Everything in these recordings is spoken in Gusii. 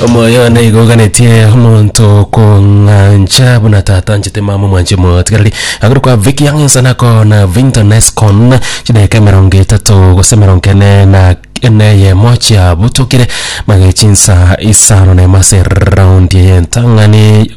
omoyo nigo oganetie omonto kong'ancha buna tata anchete mama omwanche motigareri agoro kwa viki ang'ensa nako na vinto nescon chidaeka emerongo etato gose emerongo ene na ene eyemo chiabutokire magechinsa isano na emo ase eraundi eye entang'ani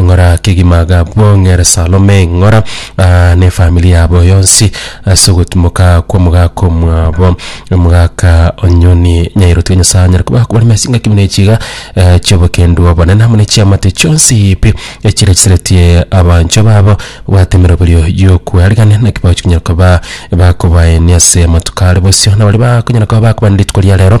Ng'ora kegima gabwong'ere Salome, ng'ora, aa, nefamiri yabo yonsi ase ogotimoka kw'omogaka omwabo, omogaka onyoni nyairoti ya Nyasae anyare koba akobani mesi ng'aki buna echi iga eh, chi'obokendu obonene amo ne chiamate chionsi pi echirecheretie abanchwa babo babwate emeroberio y'okwearigania naki bagochi konyara koba bakobaenia ase amatuko are bosio na baria bakonyara koba bakobana rituko ria rero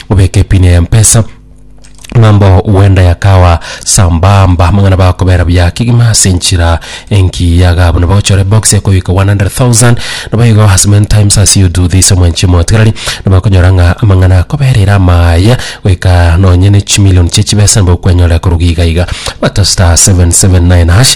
obeke epini eye mpesa ng'ambo wenda yakawa sambamba amang'ana bakobera buya kegima ase enchira enki yaga buna bagochora ebox ekoyika 100,000 nabo igo as many times as you do this omwanchi omotigarari nabo akonyora ng'a amang'ana akoberera amaya goika nonye ne chimilion chie chibesa nabo okwenyora koruga iga iga bata star 779 hash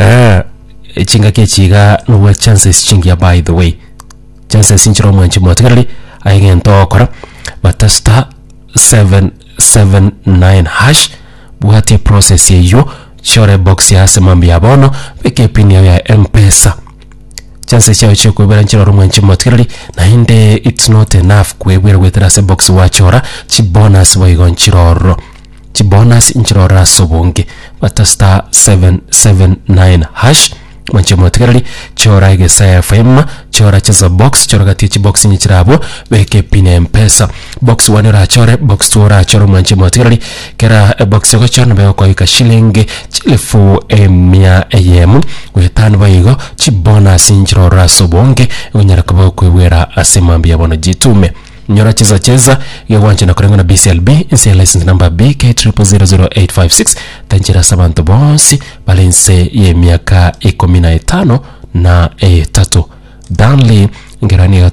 Eeh chingaki echi iga nobua chances chingiya by the way chances nchire omwanchi motigareri aye gento ogokora bata star seven seven nine hash bwatia eprocess eywo chiore ebox ya ase mambia bono beka epin yago ya mpesa chances chiago chia okoebera nchire ore omwanchi motigareri naende it's not enough kwebwera goetera ase ebox gwachora chibonus boigo nchire ororo. chibonus inchirore ase obonge bata star 779#, mwanche motigereri chora egesaya FM chora cheza box chora gati echibox inye chire abwo beke pin ya mpesa box one orachore box two orachore mwanche motigereri kera ebox ogochora nabo egokoika shillingi chilifu emia eyemo goetano boigo igo chibonus inchirore ase obonge onyare koba okoebwera ase mambia bono jitume. Nyora chesa chesa iga gwanchena koreng'wa na BCLB inse ya license number BK000856 tanchera ase abanto bonsi bare inse y'emiaka ikomi na etano na etato. Danley ngeroanio egata